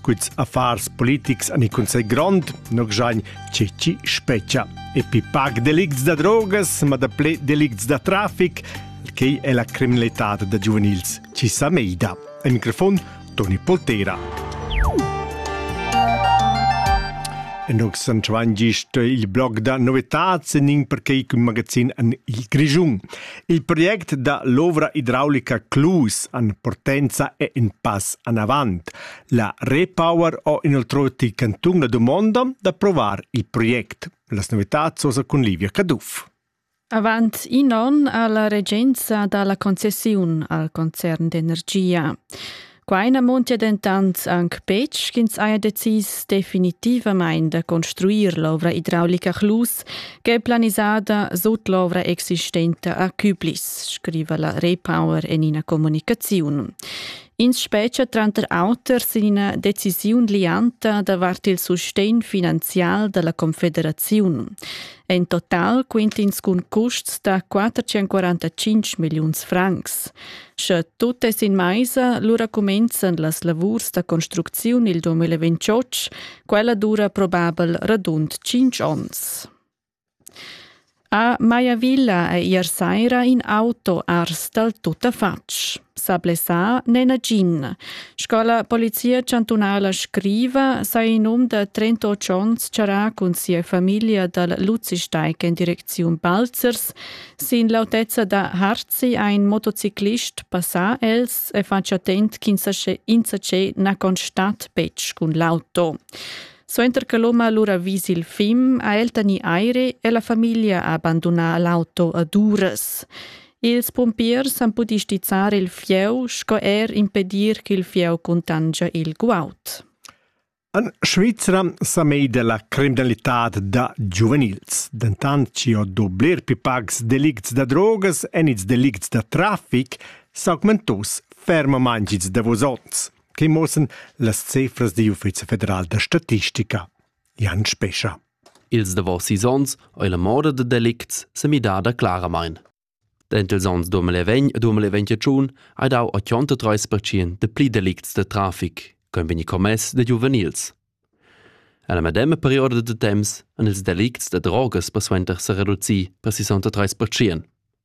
Cuts affars politics an i cunsegl grond, no gjain ceci specia. E pi pac delicts da drogas, ma da ple delicts da trafic, quei è la criminalità da giuvenils ci sa meida. Al microfon Toni Poltera. Nog san gist il blog da novetats en in perquei cun magazin an il Grischun. Il project da l'ovra idraulica Clus an Portenza è in pass anavant. La Repower ho inoltroti cantun la dumonda d'approvar il project. Las novitats osa cun Livia Caduff. Avant in onn ha la regenza dà la concessiun al concern d'energia. Quai na montia dentant anc betg ch'ins haja decis definitivamain da construir l'ovra idraulica Chlus ch'è planisada sut l'ovra existenta a Küblis, scriva la Repower en ina communicaziun. Ins spetga tranter auter sin ina decisiun lianta davart il sustegn finanzial dalla Confederaziun. En total quintins cun custs da 445 milliuns francs. Sche tut è sin maisa, lura cumenzan las lavurs da construcziun il 2028, quella dura probabel radund 5 onns. A Maiavilla ei ier saira in auto ars dal tuttafatg. Sa blessà n'è nagin. Sco la Polizia chantunala scriva, sa in um da 38 onns charrà cun sia famiglia dal Luzisteig en direcziun Balzers. Sin l'autezza da Harzi ein motociclist passà els e fatg attent ch'insatge na constat betg cun l'auto. Suenter che l'hom ha lura vis il fim, ha el tegnì aire e la famiglia ha bandunà l'auto ad uras. Ils pumpiers han pudì stizzar il fieu sco er impedir ch'il fieu cuntangia il guaud. En Svizra sa mei della criminalitad da giuvenils. Dentant ci ho do bler più pags delicts da drogas en ils delicts da traffic s'augmentos fermamain gits davos onns. che muossan las cefras digl Uffizi federal da statistica. Jan Spescha. Ils davos sis onns ei la moda da delicts semidada claramain. Dentils onns 2020-2021 hai dau 83% de pli delicts de trafic ch'ein vegni commess da giuvenils. Alla medema perioda de temps han ils delicts da drogas persuenter se reduci per 63%.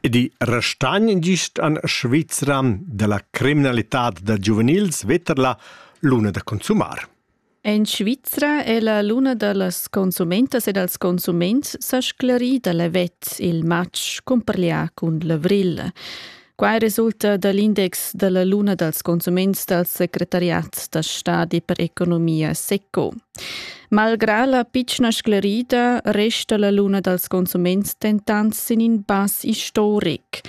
Ed i restagn gist en Svizra dalla criminalitad da giuvenils vetter la luna da consumar. En Svizra è la luna da las consumentas e dals consuments sa sclerì da l'event il matg cumparlià cun l'avril. Quai resulta da l'index da la luna dals consuments dal secretariat da stadi per economia SECO. Malgrà la pitschna sclerida resta la luna dals consuments dentant sin in pass istoric.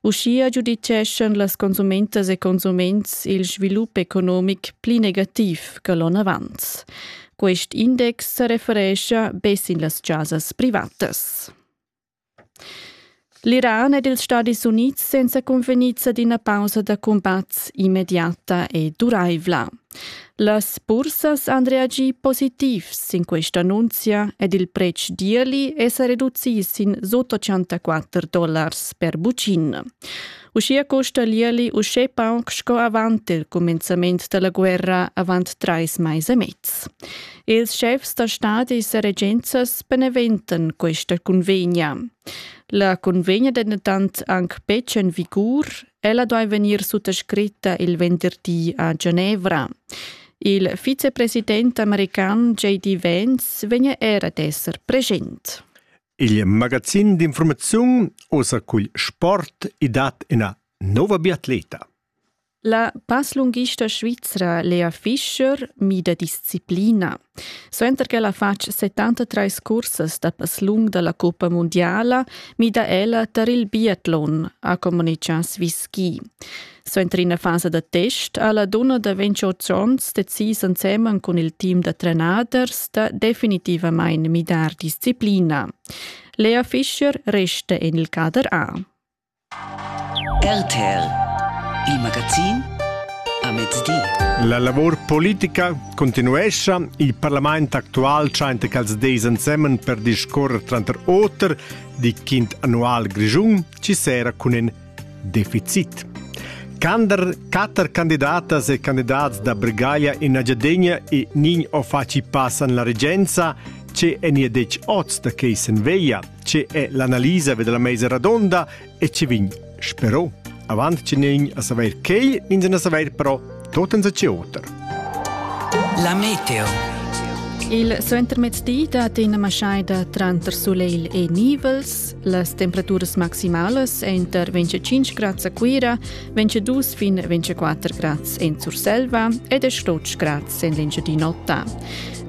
Uschia giuditgeschan las consumentas e consuments il svilup economic pli negativ che l'onn avant. Quest index sa referescha be sin las chasas privatas. L'Iran ed ils Stadis Unids senza cunvegniza d'ina pausa da cumbats immediata e duraivla. Las bursas han reagì positivs sin questa annunzia ed il pretsch d'ierli è sa reducì sin sut 84 dollars per bucin. Uschia custa l'ierli uschè pauc sco avant il cumenzament da la guerra avant trais mais e mez. Ils schefs da stadis e regenzas beneventan questa convegna. La convegna è dentant anche betg en vigur. Ella doveva vegnir suttascritta il venderdi a Genevra. Il vicepresident american J.D. Vance vegna era ad esser present. Il magazin d'informaziun osa cugl sport i dat ina nova biatleta. La passlunghista svizra Lea Fischer mida disciplina. Suenter ch'ella ha fatg 73 cursas da passlung da la cuppa mundiala, mida ella tar il biatlon, ha communitgà Swiss Ski. Suenter ina fasa da test ha la dunna da 28 onns decis ensemen cun il team da trenaders da definitivamain midar disciplina. Lea Fischer resta en il cader A. RTL, il magazin a mezdi. La lavor politica continuescha. Il parlament actual tschenta ch'als deis ensemen per discorrer tranter oter di quint annual grischun ci sera cun in deficit. Cander quatter candidatas e candidats da Bregaglia in Agiadegna e nin o faci passan la regenza, ce eni dec oz da quei sen veia. Tge è l'analisa della meisa radonda e ci vin spero avant che nin a saver quei ins a saver però tot en ce oter. La meteo. Il suentermezdi dat ina maschaida tranter soleil e nivels. Las temperaturas maximalas enter 25 grads a Cuira, 22 fin 24 grads en Surselva ed 8 grads en l'Engiadin'Ota.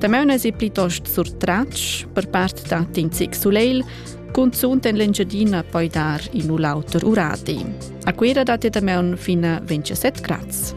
Damaun es i plitost surtratg per part da Tinzic Suleil, cunzunt en l'Engiadina poi dar in u l'auter uradi. A Cuira dat damaun fin a 27 grads.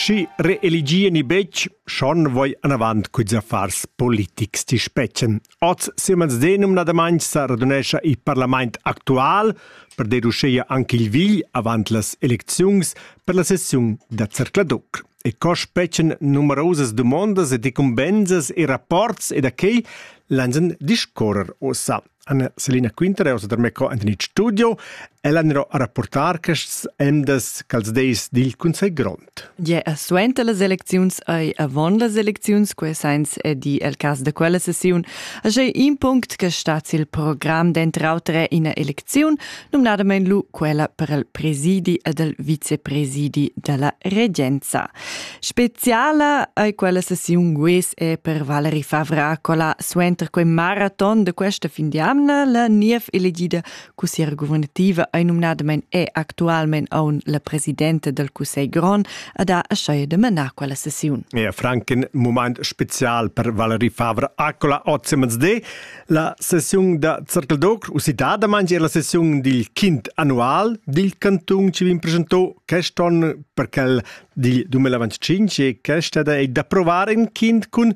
Schi reeligieni betg, schon voi anavant cuds affars politics ti spetschen, Oz siemens denumnadamain sa radunescha il parlament actual per deduceir anche il vigl avant las elecziuns per la sessiun da Zercladoc. E co spetschen numerosas dumondas ed incumbensas e rapports e da quei lansen discorrer ossa. Anna Selina Quinter è ossa da Meco Anthony Studio e l'anero a rapportar quests emdas cals deis dil Consell Grond. Gia suenter las elecziuns ei avon las elecziuns, quei sens è di el cass da quella sessiun, agei in punct che stat sil program denter auter ina elecziun, numnadamein lu quella per il presidi ed il vicepresidi dalla regenza. Speciala ei quella sessiun gues è per Valerie Favra, quella suenter quei maraton de questa fin di amna la niev elegida cussiera guvernativa ei numnadamain è actualmein aun la presidenta dal Cussegl grond ad ha aschaia de manar quella sessiun. Ja, Frank in moment spezial per Valerie Favre Accola Ozzemans de la sessiun da Zirkel d'Ocr usitadamain è la sessiun dil quint annual dil canton ci vin presentò quest'on per quel dil 2025 e questa è da provar in quint cun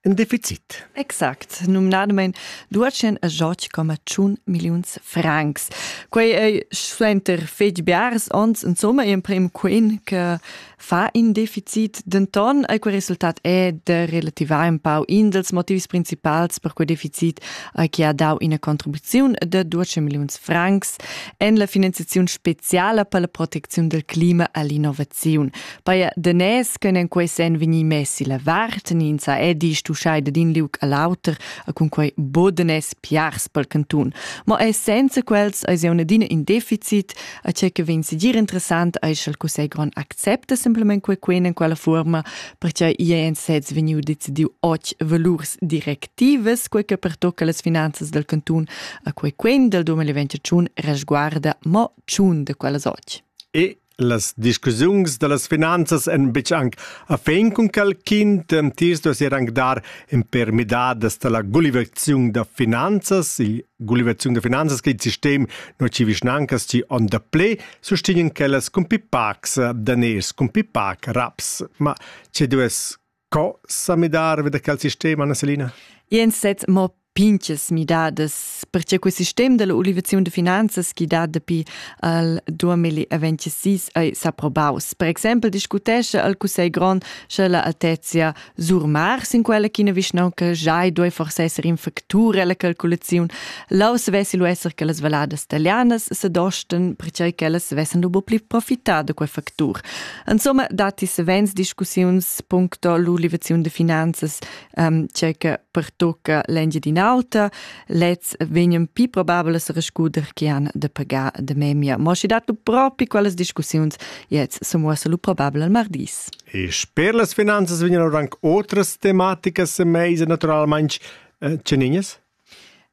in deficit. Exact, numnadamain Duatschen a George coma tschun milliuns francs. Quei ei suenter fetg biars onns insomma emprim quin che fa in deficit, denton ei quel resultat è de relativar un pau in dels motivs principals per quei deficit ei che ha dau ina contribuziun de Duatschen milliuns francs en la finanziazione speciale per la protezione del clima all'innovazione. Paia danès ch'ün en quei sen vegni messi la vart, nin sa edi stuschai da din liug a l'auter, a cun quei bodanès piars pel cantun. Ma e senza quels eis eu adina in deficit, a che che vegn sigir interessant eis sch'el cussei gron accepta simplement quei quen en quella forma, perche i è en sez vegniu decidiu och valurs directivas, quei che pertocca las finanzas del cantun, a quei quen del 2021 resguarda mo tschun de quellas och. E Las discussiuns da las finanzas èn betg anc a fin cun quel quint. Tis duess er anc dar in per midadas da la gulivaziun da finanzas. Il gulivaziun da finanzas che il sistem non ci vischnancas ci on da ple sustegnan quellas cun pipacs daners, cun pipac raps. Ma ce duess Co sa midar da quel sistem, Anna-Selina? Jens sez mo pinches midadas, perche quel sistem della ulivaziun de finanzas chi dat dapi al 2026 ei s'approbaus. Per exempel discutesce al Cussegl grond sche la altezia surmars in quella ch'ina vischnaunca giai doi forse esser in factur ella calculaziun. Lau svessi lu esser che las valadas italianas se dosten, perche quellas vessen lu pli profità da quel factur. Insomma, datti savens discussiuns puncto l'ulivaziun de finanzas um, che pertocca l'Engiadin'Alta, lez vegnan più probabile a rescuder che han de pagar de memia. Ma si dat propi quelles discussiuns jetzt so muossa lu probabile al mardis. E sper las finanzas vegnan anche outras tematikas mese naturalmente eh, ceninas?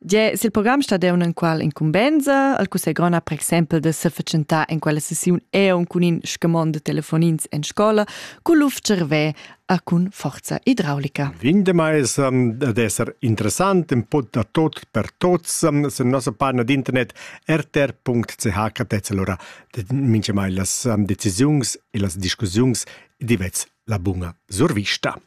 Gie, sil program stadeun enqual incumbensa, al cussegl grond ha per exempel da sefatschentar en quella sessiun eun cun in scamond de telefonins en scola cun luf cervè a cun forza idraulica. Vin de mais um, ad esser interessant in pod da tot per tots um, sur nossa pagina d'internet rtr.ch catetz allora minche mai las um, decisiuns e las discussiuns divets la bunga survista.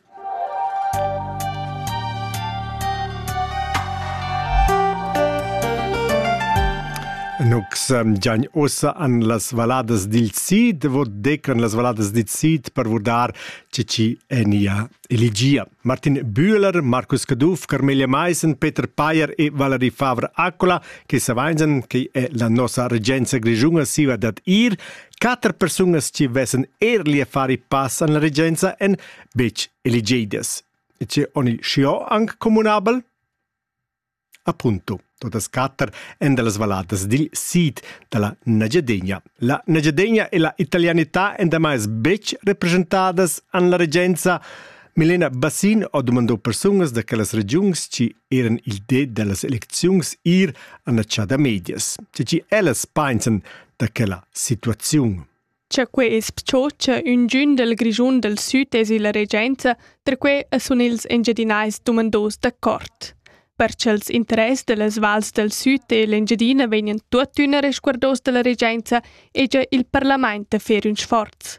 Nux giagn ossa an las valadas dil Sid, vot decan las valadas dil Sid per vurdar ce ci enia eligia. Martin Bühler, Markus Caduff, Carmelia Meissen, Peter Payer e Valerie Favre Accola, che savainsen, che è la nossa regenza grigiunga siva dat ir, Quatter persunas che vesan eirli a far il pass an la regenza en betg eligidas. E che on il scio anc communabel? Appunto, totas quatter en de las valadas dil sid da la Nagyadegna. La Nagyadegna e la italianità en demais betg representadas an la regenza. Milena Bassin ha domandò persunas da quellas regiuns ci eran il de dellas elecziuns ir an la chada medias. Ci ci ellas pensan da quella situaziun. Cha quei es pchocha üngün dal Grischun dal Süd es illa regenza, perque sun ils Engiadinais dumandos d'accord. Per cha'ls interess dellas vals dal Süd e l'Engiadina vegnan tuottüna resguardos dalla regenza, hegia il parlament da fer ün sforz.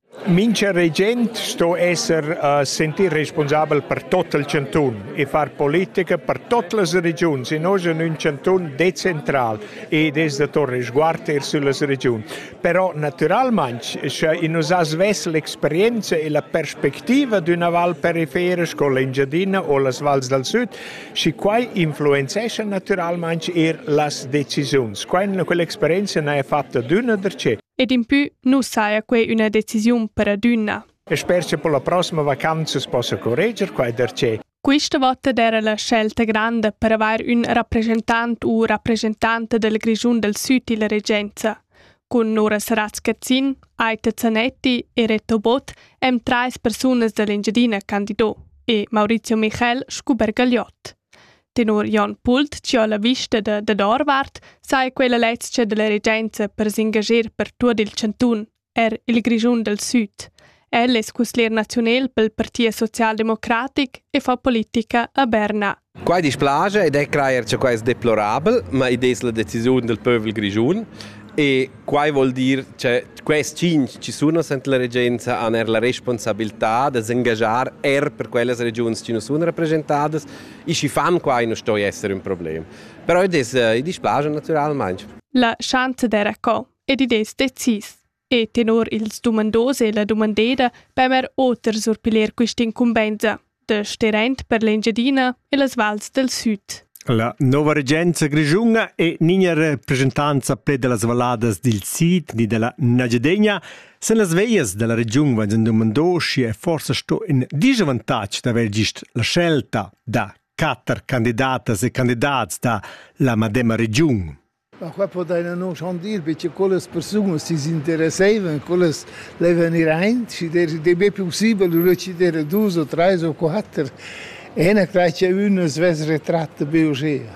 Mincha regent sto esser uh, sentir responsabel per tot il chantun e far politica per tot las regiuns e nosch in ün chantun decentral ed es da tornar sguard eir süllas regiuns. Però natüralmaing, scha in nos as vess l'experienza e la perspectiva d'üna val perifera sco l'Engiadina o las vals dal süd, schi quai influenzescha natüralmaing eir las decisiuns. Quai quell'experienza n'haja fatta d'üna darcheu. Ed impü nu saja quai üna decisiun per adüna. E sper che per la prossima vacanza si possa correger quai darcheu. Quista vota d'eira la scelta granda per avair ün rappresentant u rappresentanta del Grischun del Süd illa regenza. Cun Nora Saratz-Cazzin, Aita Zanetti e Reto Bott hem trais persunas da l'Engiadina candido e Maurizio Michel scu Bergagliot. Tenor Jon Pult, che ha la vista da, dad Orvart, saja quella lezcha della regenza per s'engager per tuot il chantun, er il Grischun del Süd. El es cusglier nazionel pel Partit Socialdemocratic e fa politica a Berna. Quai dispiace ed è crajer che quai è deplorabel, ma id es la decisiun del pövel grischun e quai vuol dir che quest cinc ci sono sent la regenza han er la responsabilità da s'engagiar er per quellas regions che non sono rappresentadas I schi fan qua e non stoi esser ün problem. Però id es i displaja natüralmaing. La chante d'era co ed id es decis. E tenor ils dumandos e la dumandeda pemer oter surpiler quist'incumbenza de Sterent per l'Engiadina e las vals del sud. La nova regenza grischuna e nigna representanza pled de las valladas dil sid ni della Nagiadegna Sen las veglias dalla regiun vain dumondo schi è forsa sto in disavantatg d'aver gist la scelta da quatter candidatas e candidats da la madema regiun. Ma qua poteina non chandir perché quellas persunas si interesseivan, quellas le venir ein, si der de be possibel reciter dus o tre o quatter. E una craccia una svess retratta be osea.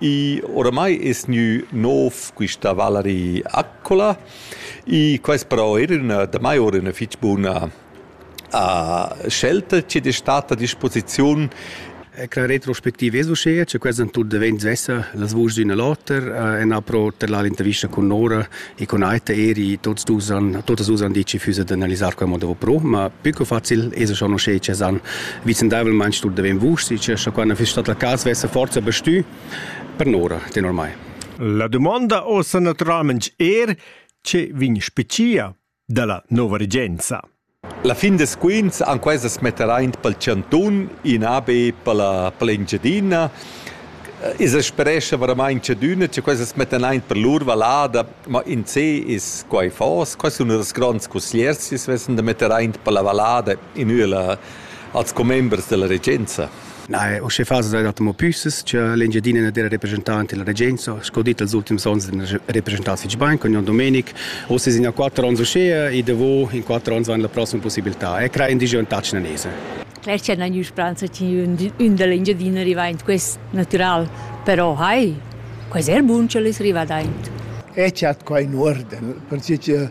I oramai es gnü nouv quista Valerie Accola. I quais però eir üna damai oura üna fich buna scelta chi'd es stat a disposiziun. Cra retrospectiv es uschea cha quels han tuot devent svessa las vuschs d'ün a l'oter e n'ha però terlà l'intervista cun Nora E cun Aita eri tots dus han totas dus han ditg füsa d'analisar quei modo pro, ma più che facil es schon uschè che san vicendavelmaing stu deven vus, sche scha quando fiss stat la cas vesse forza bestü per nora, tenor mai. La domanda ossa naturalment er, che vin specia dalla nova regenza. La fin da squinz han questas metteraint pel chantun, in AB pella per l'Engiadina. I sa sperescha varamaing tschadüna cha questas mettan aint per lur vallada, ma in se es quai fos. Quai sun ünas gronds cussiers chi's vessan da metter aint per la vallada in üna als commembers da la regenza. Na, usche fas da mo püsses cha l'Engiadina n'ha dera representant illa regenza, sco dit els ultims ons n'ha representat fich bain con Jon Domenic. Uss es in a quatter ans uschea e davo in quatter ans vain la prossima possibiltà e crà indigen tat chinanese. Cler cha na gnü spranza chi ün da l'Engiadina riva aint quest natural, però hai, quai es eir bun cha l'es rivà aint. E chat qua in uorden, perche cha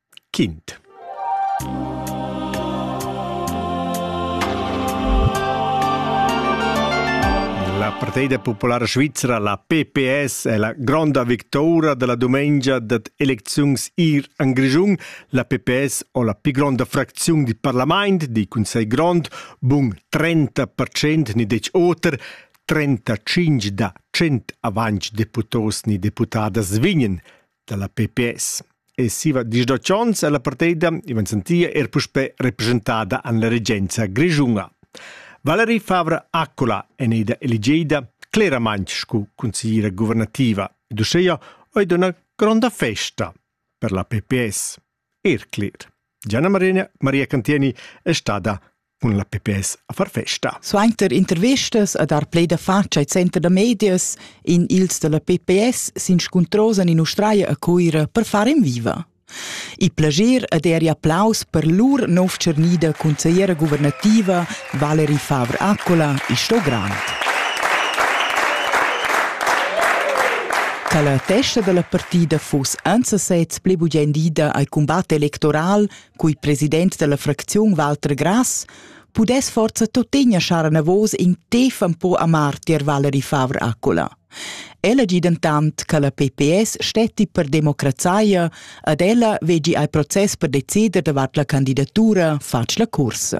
Quint. La partida populara svizra, la PPS, è la gronda victoria della dumengia dad elecziuns ir en Grischun. La PPS ho la pli gronda fracziun di parlament, di Cunsegl grond, bun 30% ni dec oter, 35 da 100 avanc deputos ni deputadas vignen. dalla PPS. E siva dis da Chons e la parteida ivan sentia er puspe representada an la regenza grischunga. Valerie Favre Accola en ida eligeida cleramaint scu consigliera guvernativa ed uscheia oi d'una gronda festa per la PPS. Erclid. Gianna Marina Maria Cantieni è stada cun la PPS a far festa. Suenter intervistas a dar play da faccia al center da medias in ils dalla PPS s'inscuntrosan in Australia a Cuira per far in viva. Il plager ed er applaus per lur nov tschernida consigliera guvernativa Valeri Favre Accola, il show grand. Quella testa dalla partida fuss ensasez pli bugen dida al cumbat electoral cui president dalla fracziun Walter Grass pudess forza tuttegna schar anavos in tef un po a martir Valeri Favre Accola. Ella gi dentant che la PPS stetti per democrazaia ad ella vegi al process per decider davart la candidatura fatg la cursa.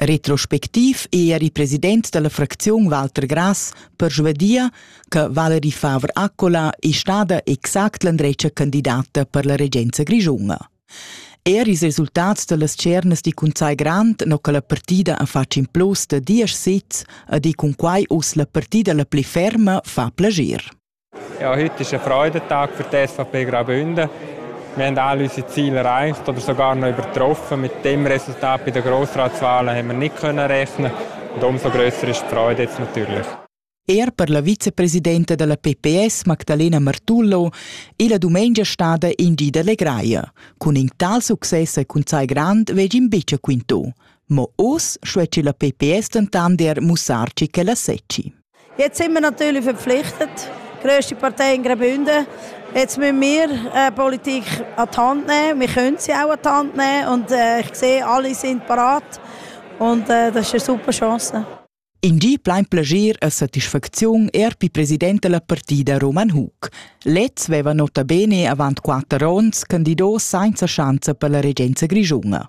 Retrospectiv è er il president della fracziun Walter Grass per Svedia che Valerie Favre-Accola è stada exact l'andretta candidata per la regenza grischunga. Er ils resultats dellas cernas di cun sai grand no che la partida ha fatg in plus de diesch sits e di cun quai us la partida la pli ferma fa plagir. Ja, heute ist ein Freudentag für die SVP Graubünden. Wir haben alle unsere Ziele erreicht oder sogar noch übertroffen. Mit dem Resultat bei den Grossratswahlen haben wir nicht können rechnen und umso grösser ist die Freude jetzt natürlich. Er per la vicepresidenta della PPS Magdalena Martullo è la dumengia stada in di delle Greia. Cun in tal succes e cun sai grand veg in bice quinto. Ma oz scueci la PPS dentan der mussarci che la secci. Jetzt sind wir natürlich verpflichtet, grösste Partei in Graubünden. Jetzt müssen wir äh, Politik an die Hand nehmen. Wir können sie auch an die Hand nehmen und äh, ich sehe, alle sind parat und äh, das ist eine super Chance. In die bleibt Plaisir a satisfacziun er pi president della partida Roman Hug. Lez veva nota bene avant quatter onns candido senza schanza per la regenza grischunga.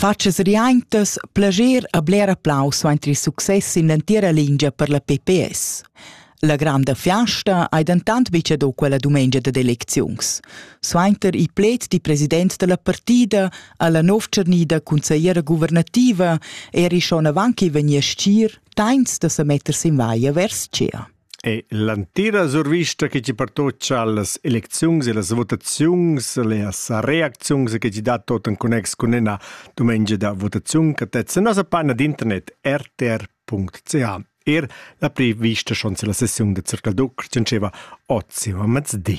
Fatschas riaintas, plascher e bler applaus suenter il success sin l'entira lingia per la PPS. La granda fiasta hai dentant betg dà quella dumengia dad elecziuns. Suenter il pled di president dalla partida ha la novtschernida consigliera guvernativa eri schon avant che vegnir stgir, tains da sa metter sin vaia vers tschea. E l'entira survista che ti pertutga las elecziuns e las votaziuns, las reacziuns che ti dat tot en connex cun ina dumengia da votaziun che tezza nossa pagina d'internet rtr.ca. Er la prevista schon la sessiun de Circal Duc tschentscheva ozio a mezdi.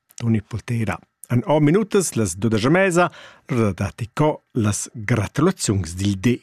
Unipotera han amo minutas las dudesch a mesa da datti co las gratulaziuns dil di.